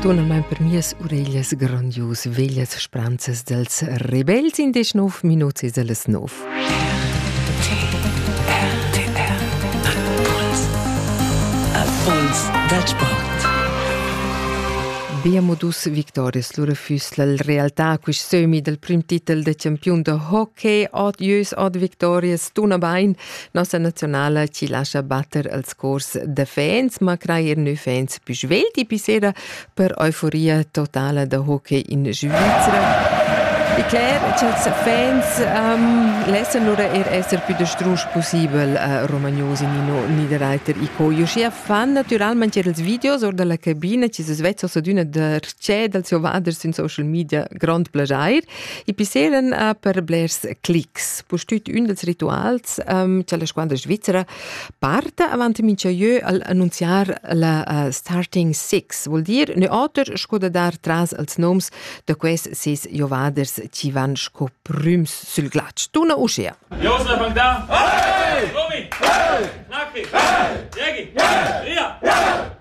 Tonamein per mias ureglias grandius veglias spranzas dels rebels in desch nov minuts e dallas nov. Impuls da sport. Bia modus victorias lura füss la realtà quist sömi dal prim titel da champiun da hockey, od ieus, od victorias, tuna bain – Nossa nazionala ci lascia batter als cors da fans, ma crai er nus fans più svelti pi sera per euforia totala da hockey in Svizzera. E clar, cha'ls fans um, lessan lura er esser pü da strusch pussibel uh, romagnos in ino Niederreiter i co. Uschia fan natüralmaing er els videos or da la cabina chi s'es vezzos ad üna darchè dals ovaders in social media grond plaschair e pisseren uh, per blers clics. pustüt ün dels rituals um, cha la squadra svizzera parta avant mincha jeu al annunziar la uh, Starting Six, vuol dir ne oter sco da dar tras als noms da quels ses giovaders chi van sco prüms sül glatsch. Tuna uschea. Josef Bangda! Hey! Romi! Hey! Naki! Hey! Jegi! Hey! Ria! Hey!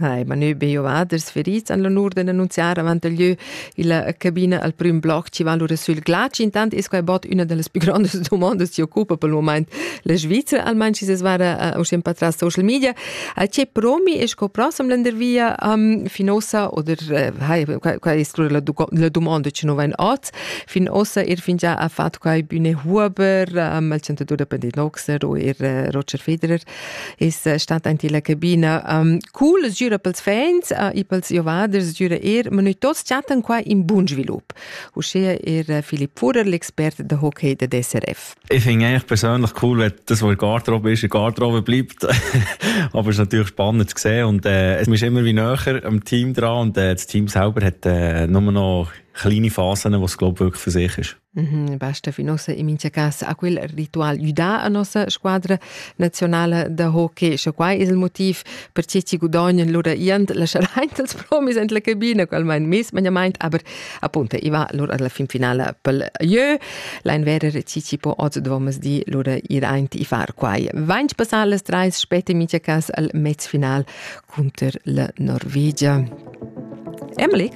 Hai, ma nü be giovaders ferits han l'onur d'annunziar avant il lieu illa cabina al prüm bloc chi va lura sül glatsch. Intant es quai bod üna da las pü grandas dumondas chi occupa pel mumaint la Svizra, almain schi s'es vara uh, uschè pa tras social media. Uh, che promi es sco prossam lendervia um, fin ossa oder uh, hai, quai, quai es la, la dumonda chi nu vain hoz fin ossa er fingià ha fat quai Bühne Huber, um, il chantadur da Pendit Noxer o er uh, Roger Federer. es eh, stat aint illa cabina. Um, cool, es gira pels fans uh, e pels giovaders, gira eir, ma noi tots chattan qua in bun svilup. Uschea er eh, Philipp Fuhrer, l'expert de hockey de DSRF. Ich finde eigentlich persönlich cool, wenn das, was in Garderobe ist, in Garderobe bleibt. aber es ist natürlich spannend zu sehen und äh, es ist immer wie näher am Team dran und äh, das Team selber hat äh, nur noch kleine Phasen, wo es glaube wirklich für sich ist. Basta fin ussa in mincha cas a quel ritual güdà a nossa squadra naziunala da hockey. Scha quai es il motiv perche chi gudognan lura iant la scharaint dals promis in la cabina, qualmain mismagnamaint, aber appunto i va lura alla fin finala pel jeu. Lain verer chi chi po oz dvommas di lura ir aint i far quai. Vainch passar las trais spet in mincha cas al mez final cunter la Norvegia. Emily!